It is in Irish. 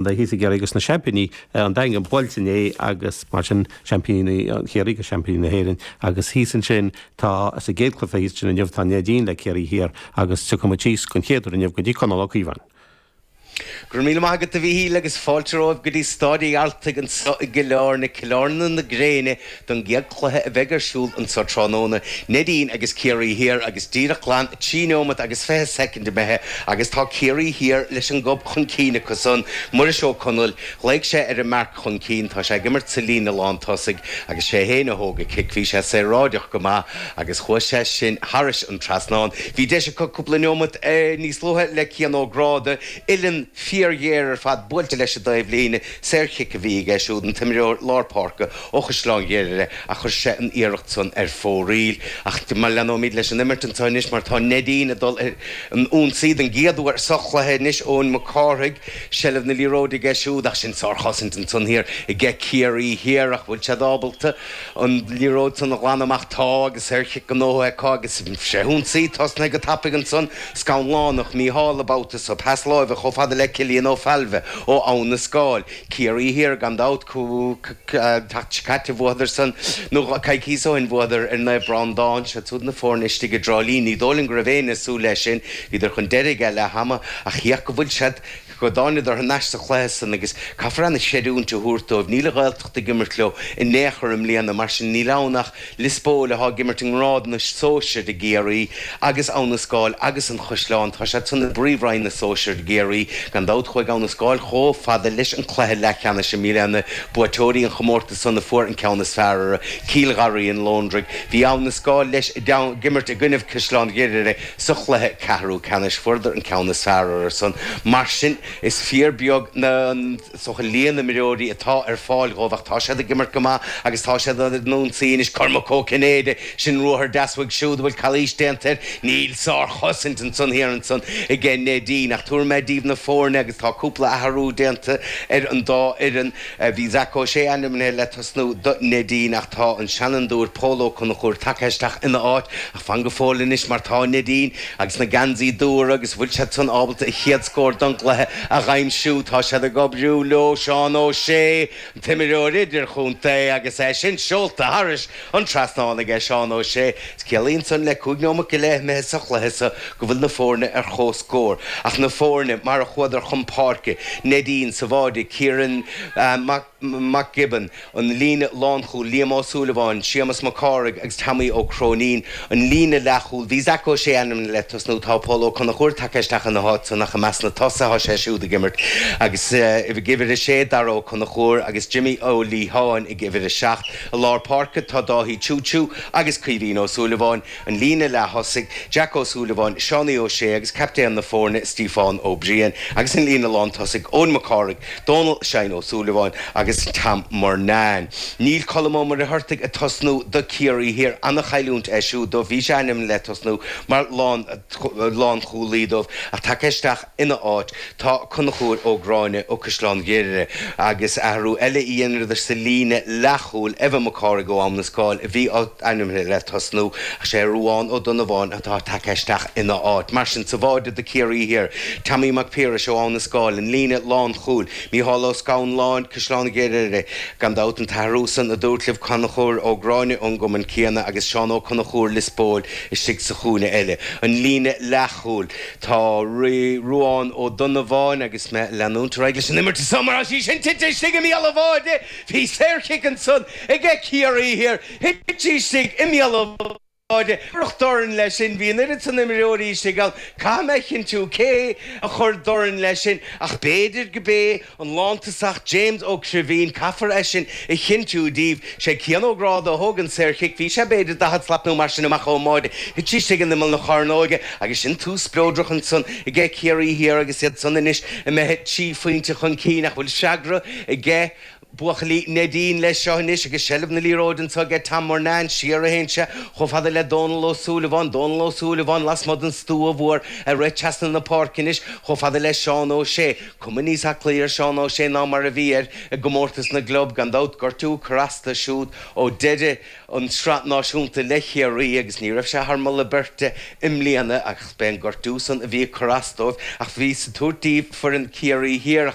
Bhí thíos i gCiarraí agus na seaimpíní an Daingean buailte inné agus mar sin seaimpíní Chiarraí agus seaimpíní na hÉireann agus thíos ansin tá, sa gcéad cluiche thíos ansin inniu tá Neidín le Ciarraí Thiar agus tiocfaidh muid síos den chéad uair inniu go dtí Conall Ó Cíobháin. Go raibh míle maith agat a Mhíchíl agus fáilte romhaibh go dtí Staid a' Ghearaltaigh anseo i gCill Áirne, Cill Áirne na Gréine, don gcéad chluiche a bheidh ar siúl anseo tráthnóna, Neidín agus Ciarraí Thiar agus díreach glan 3 nóimeat agus 20 soicind imithe agus tá Ciarraí Thiar leis an gob chun cinn acu san, Muiris Ó Conaill, ghlaoigh sé ar an marc chun cinn, tá sé ag imirt sa líne lán tosaigh agus sé fhéin a thóg a chic, bhí sé saoráideach go maith agus chuaigh sé sin thairis an trasnán, bhí deis acu cúpla nóimeat níos luaithe le Cian Ó Gráda, uilleann fíor ghéar ar fad buailte leis i dtaobh líne, Saorchic a bhí aige siúd, an t-imreoir lár páirce ó Chaisleán Ghriaire, ach chuir sé an iarracht san ar fóraoil. Ach leanfaimid leis an imirt anseo anois mar tá Neidín ag dul ar an ionsaí den gcéad uair sa chluiche anois, Eoin Mac Cárthaigh, seilbh na liathróide aige siúd ach sin sárchosaint ansan thiar aige Ciarraí Thiar ach bhfuil siad ábalta an liathróid san a ghlanadh amach. Tá, agus saorchic gnóthaithe acu agus seo chun ionsaí. Tosnaithe go tapaidh ansan, Scanlánach, Mícheál, an babhta seo, pas láimhe chomh fada le Cillian Ó Failbhe ó Abha na Scáil. Ciarraí thiar gan dabht, seachtain seo caite bhuadarsan, nó coicíos ó shin bhuadar ar Naomh Breándán. Siad súd na fóirne istigh i dTrá Lí. Ní dóigh liom go raibh éinne ag súil leis sin. Bhíodar chun deiridh ag leath ama, ach féach go bhfuil siad. Go dtánadar thar n-ais sa chluiche san agus caithfear ana-chreidiúint a thabhairt dóibh, níl an Ghaeltacht ag imirt leo in aon chor i mbliana, mar sin níl ann ach Liospóil atá ag imirt i ngrád na sóisear i gCiarraí agus Abha na Scáil agus An Chaisleán, tá siad san i bpríomhroinn na sóisear i gCiarraí. Gan dabht chuaigh Abha na Scáil chomh fada leis an cluiche leathcheannais i mbliana, buaiteoirí an chomórtas san a fuair an ceann is fearr ar Chill Gharraí an Londraigh. Bhí Abha na Scáil leis ag imirt i gcoinnibh Caisleán Ghriaire, Sa chluiche ceathrú ceannais fuaireadar an ceann is fearr orthusan, mar sin is fíor beag an líon imreoirí atá ar fáil dhóibh, ach tá siad ag imirt go maith agus tá siad ar an ionsaí anois. Cormac Ó Cinnéide, sin ruathar deas uaidh siúd a bhfuil calaois déanta air. Níl sárchosaint ansan thiar ansan ag Neidín, ach tabharfaidh mé daoibh na foirne agus tá cúpla athrú déanta ar an dá fhoireann. Bhí Zac Ó Sé ainmnithe le tosnú do Neidín ach tá an seanfhondúir Pól Ó Conchúir tagtha isteach ina áit. Fan go fóill anois mar tá Neidín agus na geansaithe dubha agus an bhfuil siad san ábalta an chéad scór don gcluiche a dh'aimsiú? Tá siad ag oibriú leo Seán Ó Sé, an t-imreoir idirchontae agus é sin seolta thairis an trasnán aige Seán Ó Sé. Ciallaíonn san le cúig nóimeat go leith imithe sa chluiche sa, go bhfuil na foirne ar chomhscór. Ach na foirne mar a chuadar chun páirce, Neidín sa bháide, Ciarán Mac. Mac Giobúin, an líne lánchúil, Liam Ó Súilleabháin, Séamas Mac Cárthaigh agus Teaimí Ó Cróinín, an líne leathchúil, bhí Zac Ó Sé ainmnithe le tosnú, tá Pól Ó Conchúir tagtha isteach ina háit san ach i measc na tosaithe tá sé siúd ag imirt agus ag uimhir a sé, Dara Ó Conchúir agus Jimí Ó Liatháin ag uimhir a seacht. I lár páirce tá Dáithí Ciuciu agus Caoimhín Ó Súilleabháin. An líne leath-thosaigh, Jack Ó Súilleabháin, Seánie Ó Sé agus captaen na foirne, Stíofán Ó Briain, agus an líne lán-tosaigh, Eoin Mac Cárthaigh, Dónal Sheáin Ó Súilleabháin agus Tom Murnane. Níl Colm Ó Muircheartaigh ag tosnú do Ciarraí Thiar, an-chailliúint é siúd dóibh, bhí sé ainmnithe le tosnú mar lán-chúlaí dóibh ach tagtha isteach Ina áit, tá Conchúr Ó Gráinne ó Caisleán Ghriaire, agus athrú eile a dheineadar sa líne leathchúil, Evan Mac Cárthaigh ó Abhainn an Scáil a bhí ainmnithe le tosnú, ach is é Ruán Ó Donnabháin atá tagtha isteach ina áit. Mar sin, sa bháide do Chiarraí Thiar, Teaimí Mac Piarais ó Abhainn an Scáil, an líne lánchúil, Micheál Ó Scanláin, Caisleán Ghriaire, gan dabht, an t-athrú san a dúrt libh, Conchúr Ó Gráinne ón gcumann céanna agus Seán Ó Conchúir Lios Póil istigh sa chúinne eile, an líne leathchúil. Tá Ruán Ó Donnabháin agus mé ag leanúint ar aghaidh leis an imirt anso mar tá sí sin tite istigh i mbéal an bháide. Bhí saorchic ansan ag Ciarraí Thiar. Thit sí istigh i mbéal an bháide. Cuireadh dorn leis sin. Bhí an oiread san imreoirí istigh ann. Caithfidh mé a chinntiú cé a chuir dorn leis sin ach b'fhéidir go b'é An lántosach James Ó Cribhín, caithfear é sin a chinntiú daoibh. Sé Cian Ó Gráda a thóg an saorchic, bhí sé, b'fhéidir, daichead slat nó mar sin amach ón mbáide, thit sí istigh in imeall na cearnóige agus sin tús spleodrach ansan aige Ciarraí Thiar agus iadsan anois imithe trí phointe chun cinn ach bhfuil freagra aige buachaillí Neidín leis seo anois agus seilbh na liathróide anso aige Tom Murnane, siar a théann sé chomh fada le Dónal Ó Súilleabháin, Dónal Ó Súilleabháin lasmuigh den stua mhór ag rith trasna na páirce anois chomh fada le Seán Ó Sé. Cuma níos aclaí ar Seán Ó Sé ná mar a bhí air i gcomórtas na gclub, gan dabht. Gortú ag cur as dó siúd ó deireadh an Sraith Náisiúnta le Chiarraí agus ní raibh sé thar moladh beirte i mbliana ach b'é an gortú san a bhí ag cur as dóibh ach bhíos ag tabhairt díbh foireann Chiarraí Thiar.